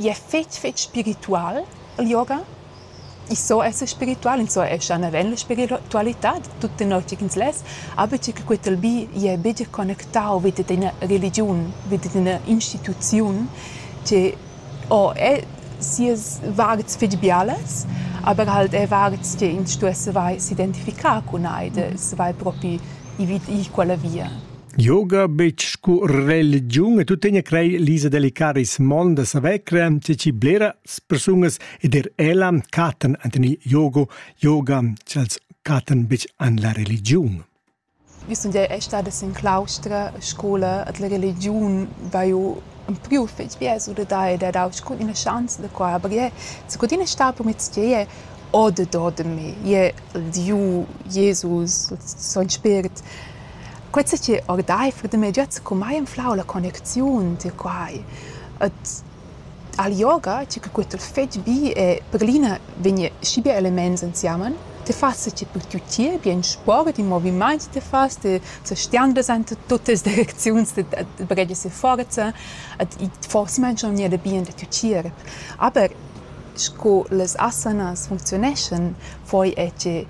I es fich fich spiritual il yoga. I so esser spiritual, ins so esser naven la spiritualità tut tenor tgi ch'ins less, aber tgi che quetel bi jè bider connectau vi dad ina religiun, vi dad ina instituziun che o è sias vards fich bialas, aber halt è vards che ins stuess avair s'identificar cun ei, da savair propi i vi i quella via. Yoga betg scu religiun e tuttegna crei lisa delicaris mondas a vecra, che ci blera persunas ed er ella catan ant in yogo, yoga, ch'els catan betg an la religiun. Vi sun jau è stada sin claustra a scola et la religiun va jo un priu fetg bia su da da e da dau cun ina chance da qua aber je sco tina sta per mit je o de do de me je Dieu Jesus son spirit Quei sa chi ordeifer da mei giat secumai anflau la connecziun tier quai. Et al yoga, tgi che queta fetg bi e per glina vegn schi bia elements ensemen, ti fas sa chi per tiu tier bien sport, in movimaint ti fas, ti sa stian presenta tuttas direcziuns da da breggia si forza et i forsa mangia aunc gnanca bien da tiu tier. Aber sco las asanas funcziuneschan, poi è che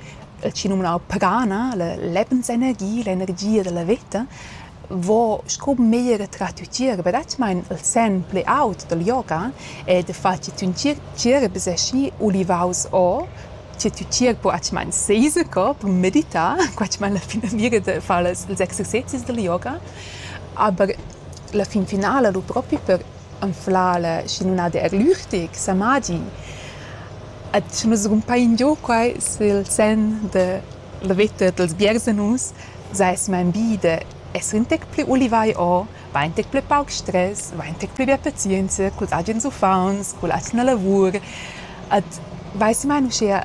chi numnau pagana, la lebensenergia, l'energia dalla veta, vo sco meglier trat tier bretschamein il senn pli aut dal yoga e da far che tün tgirabeseschi ulivaus o che tü tgir bretschamein seisecor per meditar, bretschamein la finamira da far las ils exercezis dal yoga, aber la fin finala lu propi per anflar la schinumnada er lüchtig, samadi. Ed sche nus rumpain giò quai sül sen da la vetta dals biersanus, saisma in bi da esser ün tec plü ulivai o, vain ün tec plü pauc stress, vain ün tec plü be pazienza culs agens uffants, culla atgna lavur. Ed vaissi mai uschea